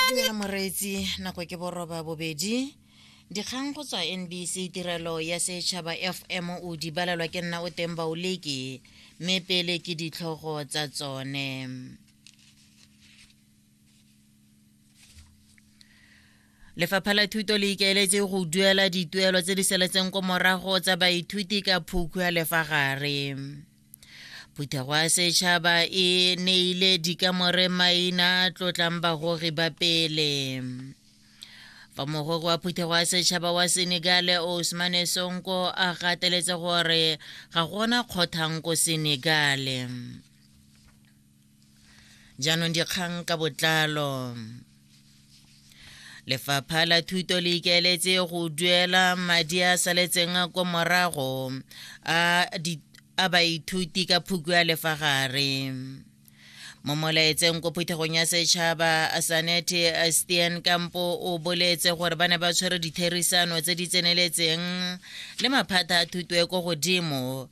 dumela moreetsi nako ke boroba bobedi dikgang go tswa nbc tirelo ya setšhaba fm o di balelwa ke nna o teng baoleki mme pele ke ditlhogo tsa tsone lefapha la thuto le ikaeletse go duela dituelo tse di seletseng ko morago tsa baithuti ka phukhu ya lefa gare phuthego ya setšhaba e neile dikamore maina tlotlang bagogi ba pele fa mogwego wa phuthego ya setšhaba wa senegal osmane sonko a gateletse gore ga gona kgothang ko senegal jaanong dikgang ka botlalo lefapha la thuto le ikaeletse go duela madi a saletseng ko morago a a baithuti ka phuku ya lefagare mo molaetseng ko phuthegong ya setšhaba sanete stian kampo o boletse gore ba ne ba tshwere ditherisano tse di tseneletseng le maphata a thuto e ko godimo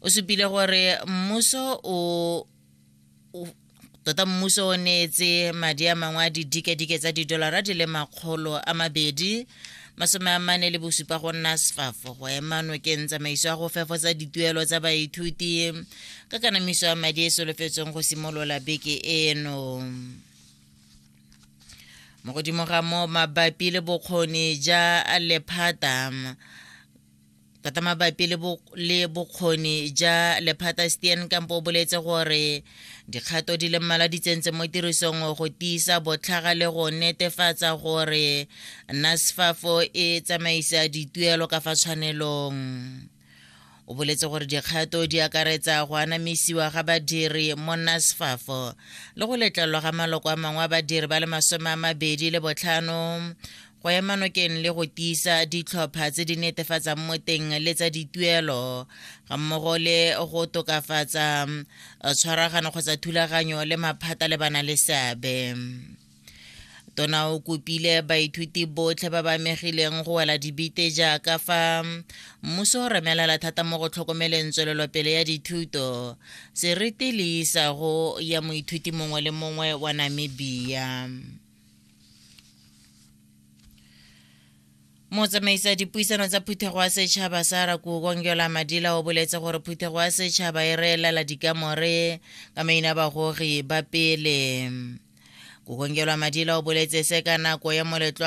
o supile gore mmuso o tota mmuso o neetse madi a mangwe a didikadike tsa didolara di le makgolo a mabedi masome a mane le bosupa go nna sfafo go ema nokeng tsamaiso ya go fefotsa dituelo tsa baithuti ka kanamiso ya madi e solofetsweng go simolola beke eno mo godimo ga mo mabapi le bokgoni ja lephata tota mabapi le bokgoni ja lephata stien kampo o boletse gore dikgato di le mmala di tsentse mo tirisong go tiisa botlhaga le go netefatsa gore nasfafo e tsamaisa dituelo ka fa tshwanelong o boletse gore dikgato di akaretsa go anamisiwa ga badiri mo nasfafo le go letlelwa ga maloko a mangwe a badiri ba le masome a mabedi le botlhano go ema nokeng le go tiisa ditlhopha tse di netefatsang mo teng le tsa dituelo ga mmogo le go tokafatsa eh, tshwaragano kgotsa thulaganyo le maphata le bana le seabe tona o kopile baithuti botlhe ba ba amegileng go wela dibite jaaka fa mmuso o remelela thata mo go tlhokomeleng tswelelopele ya dithuto seriti le isago ya moithuti mongwe le mongwe wa namibia motsamaisa dipuisano tsa phuthego ya setšhaba sa rakokongyola madila o boletse gore phuthego ya setšhaba e reelela dikamore ka maina bagogi ba pele kokongyola madila o boletse se ka nako ya moletlo